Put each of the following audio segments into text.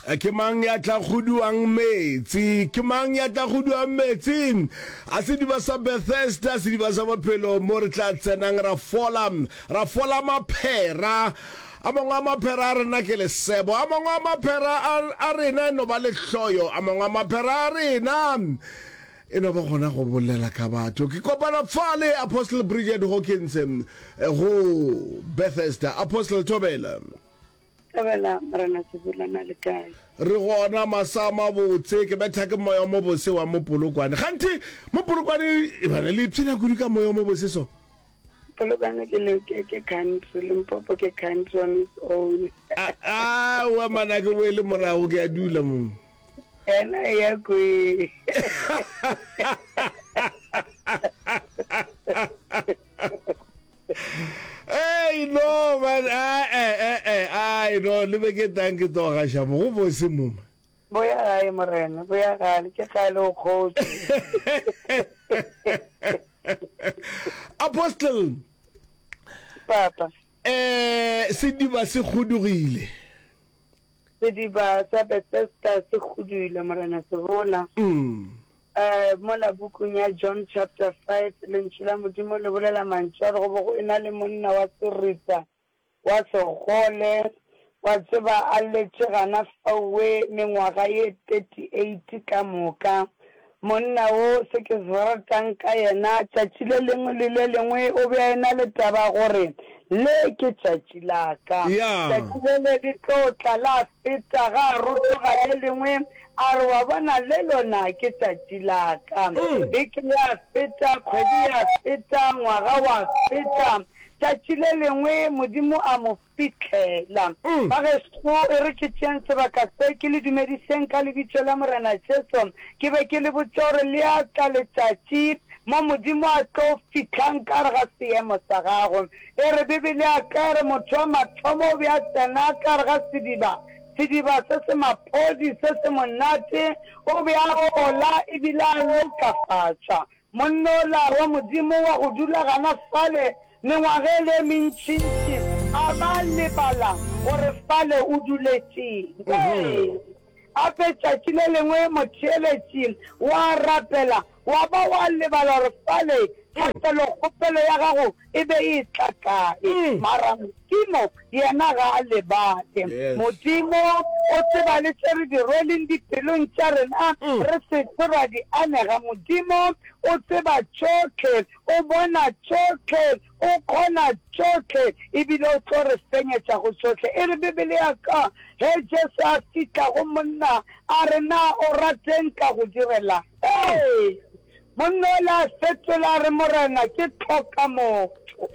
Ke mang ya tla kguduang meetse? Ke mang ya tla kguduang meetse? A sediba sa Bethesda, sediba sa bophelo mo re tla tsenang ra fola, ra fola maphera. A mangwe a maphera a rena ke lesebo, a mangwe a maphera a rena e no ba lehloyo, a mangwe a maphera a rena e no ba gona go bolela ka batho. Ke kopana fale Apostle Bridget Hawkins go Bethesda. Apostle Thobela. Dumela Morena Sebula, na le kae? Re gona masa a mabotse, ke betha ke moya o mobose wa mo Polokwane. Kganthe mo Polokwane e bana le ipshina kudu ka moya o mobose so. Polokwane ke le ke ke country, Limpopo ke country on its own. Ah, ah, wa mana ke bo le morago ke a dula mo. Ena e ya ko e. Hey, no, man, ah, eh, eh, eh, ah, no, le be ke tang ke toga shamo, go bo se muma. Bo ya gae, morena, bo ya gale, ke gale o kgotse. Apostle. Papa. Eh, sediba se kgudugile. Sediba sa Bethesda se kgudugile, morena, se bona. Mm. A Mola pukung ya John chapter five, Lentšu la Modimo le bolela mantšu a re go be go e-na le monna wa serita wa segole. Wa tseba, a lletše gana faowe mengwaga ye thirty-eight ka moka. Monna wo, se ke se ratang ka yena, tšatši le lengwe le le lengwe o be a e-na le taba ya gore, Le ke tšatši la ka. Tšatši le le tlo tla la feta, ga a rotoga le lengwe, A re, Wa bona, le lona ke tšatši la ka. Beke ya feta, kgwedi ya feta, ngwaga wa feta, tšatši le lengwe Modimo a mo fihlela. Bagešo, e re ke tšeeng sebaka se, ke le dumedišeng ka Lebitso la Morena Jesu. Ke be ke le botša gore le a tla letšatši mo Modimo a tlo fihlang ka gare ga seemo sa gago. E re Bibele ya ka e re motho wa mathomo o be a tsena ka gare ga sediba, Sediba se se maphodi se se monate o be a ola e bile a lokafatša monnola wa Modimo wa go dula gana fale mengwageng e mentšintši a ba a lebala gore fale o duletše'ng. Ee, gape tšatši le lengwe motheeletši wa rapela Wa ba wa lebala gore fale ga felo kgopelo ya gago e be e tla kae. Mara Modimo yena ga a lebale. Modimo o tseba le tše re di rweleng dipelong tša rena re se tlo ra di anega. Modimo o tseba tšohle, o bona tšohle. O kgona tšohle ebile o tlo re fenyetša go tšohle. E re Bibele ya ka, Ge Jesu a fihla go monna, a re, Na o rat'e nka go direla'ng? Ee! Monna o la fetola a re, Morena, ke hloka motho.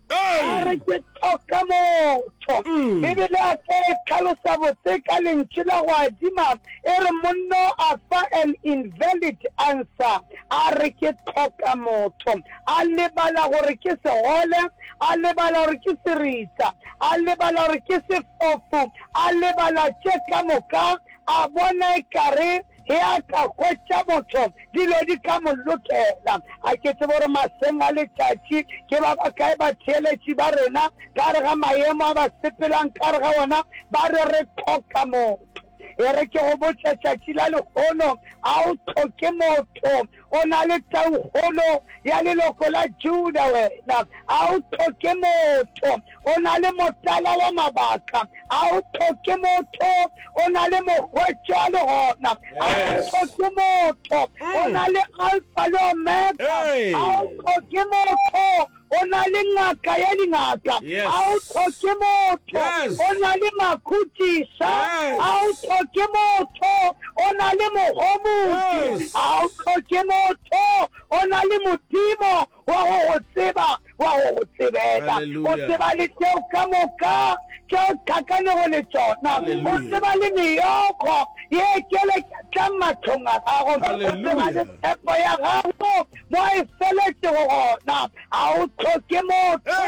A re, Ke hloka motho. Bibele ya ka e hlalosa botse ka lentšu la go adima, e re, Monna a fa an invalid answer, a re, Ke hloka motho. a lebala gore ke segole, a lebala gore ke seritsa, a lebala gore ke sefofu, a lebala tše ka moka, a bona ekare ge a ka hwetša motho dilo di ka mo lokela. A ke tsebe gore maseng a letšatši ke ba bakae batheeletši ba rena ka gare ga maemo a ba sepelang ka gare ga ona ba re re hloka motho. E re ke go botša tšatši la lehono, a o tlhoke motho, o na le taukgolo ya leloko la Juda wena, a o tlhoke motho, o na le motala wa mabaka, a o tlhoke motho, o na le mogwetšwa le gona, a o tlhoke motho, o na le alfa le omega, a o tlhoke motho, o na le ngaka ya dingaka, ga o tlhoke motho, o na le makhutisa, ga o tlhoke motho, o na le mogomotsi, ga o tlhoke motho, o na le Modimo wa go go tseba, wa go go tsebela. O tseba le tšeo ka moka tše o tlhakanego le tsona, o tseba le meyogo ye e tšweletšang mahlong a gago, o tseba le tshepo ya gago. mo e feletšego gona, ga o tlhoke motho,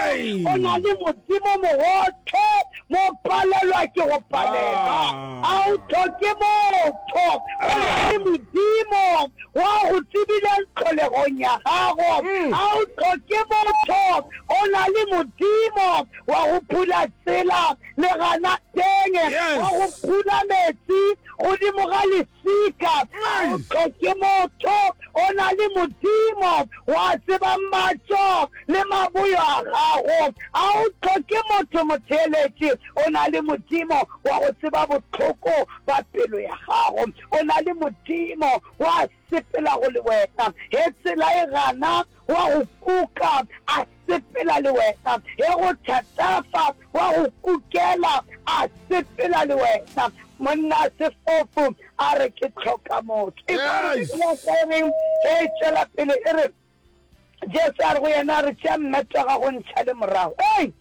o na le Modimo mogote, mo palelwa ke go palelwa, ga o tlhoke motho, o na le Modimo wa go tsebileng tlholegong ya gago, ga o tlhoke motho, o na le Modimo wa go phula tsela le gana teng, wa go phula metsi godimo ga Sika, motho ke motho, o na le Modimo, o a tseba matšo le maboyo a gago. A o tlhoke motho motheeletši, o na le Modimo, o a go tseba bohloko ba pelo ya gago. O na le Modimo, o a sepela go le wena, ge tsela e gana, o a go kuka, a sepela le wena, ge go thatafa wa go kukela a sepela le wena. Monna sefofu a re ke tlhoka motho. Yes! Ekareng ge e tšwela pele e re, Jesu a re go yena, re tšea mmet wa gago o ntšhale morago. Ei!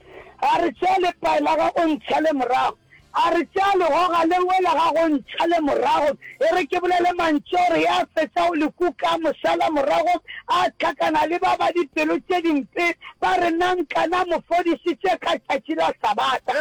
A re tšea lepae la gago o ntšhale morago. A re tšea legoga le wela ga go ntšha le morago. E re ke bolele mantšu a gore ya fetša go le kuka mošala morago a hlakana le ba ba dipelo tše dimpe ba re, Na nka na mo fodišitše ka tšatši la Sabata?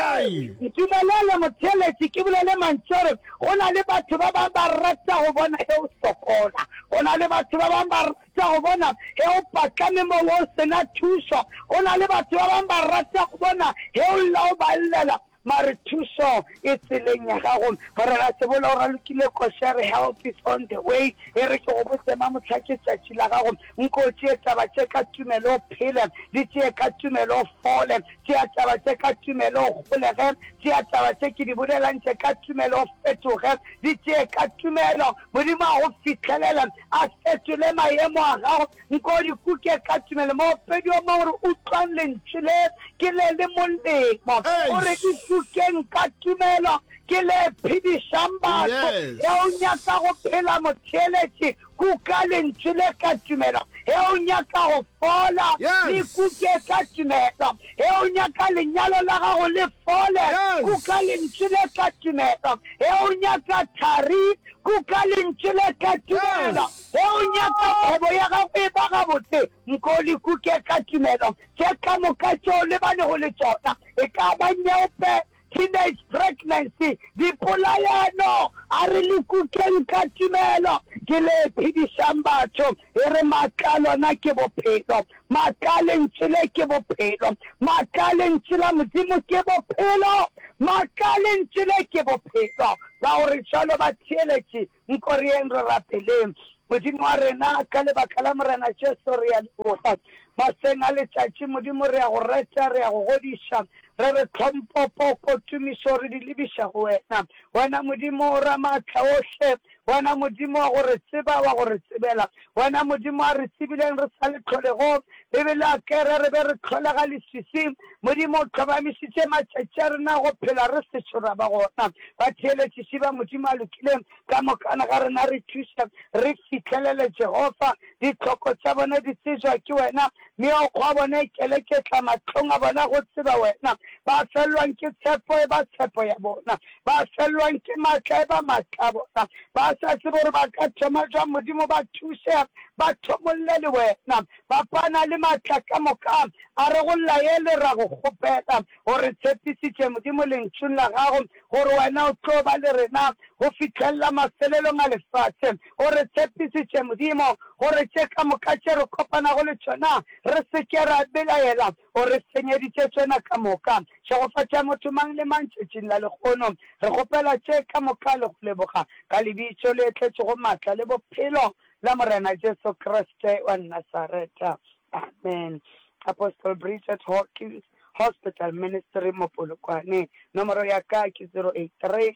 Ntumelele motheeletši ke bolele mantšu a gore go na le batho ba bangwe ba rata go bona ge o sokola. Go na le batho ba bangwe ba rata go bona ge o patlame mo o se na thušo. Go na le batho ba bangwe ba rata go bona ge o lla o ba llela. Mare thušo e tseleng ya gago. Gore ga se bola o ralokile košere, help is on the way. E re ke go botse ma mohla ke tšatši la gago. Nko o tšee taba tše ka tumelo o phele, di tšee ka tumelo o fole. Tšea taba tše ka tumelo o golege, tšea taba tše ke di bolelantše ka tumelo o fetoge. Di tšee ka tumelo, Modimo a go fihlelela a fetole mayemo a gago. Nko di kuke ka tumelo, moopedi wa mangwere o utlwang lentšu le, ke le le molemo. O re, Di kukeng ka tumelo, ke le phedišang batho. Ge o nyaka go phela, motheeletši, kuka lentšu le ka tumelo. Ge o nyaka go fola, le kuke ka tumelo. Ge o nyaka lenyalo la gago le fole, kuka lentšu le ka tumelo. Ge o nyaka thari, kuka lentšu le ka tumelo. Ge o nyaka kgwebo ya gago e ba gabotse, nko o le kuke ka tumelo tše ka moka tše o lebanego le tšona, e ka ba nyeope, teenage pregnancy, dipolaelo. A re le kukeng ka tumelo. Ke le phedišang batho. E re maaka a lona ke bophelo. Maaka a Lentšu le ke bophelo. Maaka a Lentšu la Modimo ke bophelo. Maaka a Lentšu le ke bophelo. Ka gore bjalo batheeletši Nkoreng re rapeleng Modimo wa rena, ka lebaka la Morena Jesu re a leboga. Mahleng a letšatši, Modimo, re a go reta, re a go godiša. Re re tlhompho, poko, tumišo re di lebiša go wena. Wena Modimo, Ramaatla ohle, wena Modimo wa go re tseba, wa go re tsebela. Wena Modimo a re tsebileng re sa le tlholegong, Bibele a kere re be re tlholega leswiswing. Modimo o tlhomamišitše matšatši a rena a go phela re sešo ra ba gona. Batheeletšiši ba Modimo a lokileng ka mokana ga rena re thuše re fihlelele Jehofa. Ditlhoko tša bona di tsebjwa ke wena, Meokgo ya bona e keleketla mahlong a bona go tseba wena. Ba felelwang ke tshepo e ba tshepo ya bona, ba felwang ke matla e ba matla a bona, ba sa tsebe gore ba ka thoma jwang. Modimo, ba thuse, ba thomolle le wena. Papa, a na le matla ka moka, a re go laele, ra go kgopela, o re tshepisitše, Modimo, Lentšung la gago, gore wena o tlo ba le rena go fihlelela mafelelong a lefase. O re tshepisitše, Modimo, gore tše ka moka tše re kopanago le tšona re se ke ra belaela, O re senyeditše tšona ka moka. Šegofatša motho mang le mang tšatšing la lehono. Re kgopela tše ka moka le go leboga, ka Lebitso le tletšego maatla le Bophelo la Morena Jesu Kriste wa Nasareta. Amen. Apostle Bridget Hawkins, Hospital Ministry, Mopolokwane. Nomoro ya ka ke 083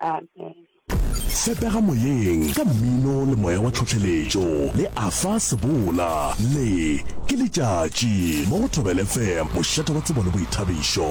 Amen. Fepega Moyeng ka mmino le moya wa tlhohleletšo le Afa Sebola le Ke Letšatši mo go Thobel FM, mošate wa tsebo le boithabišo.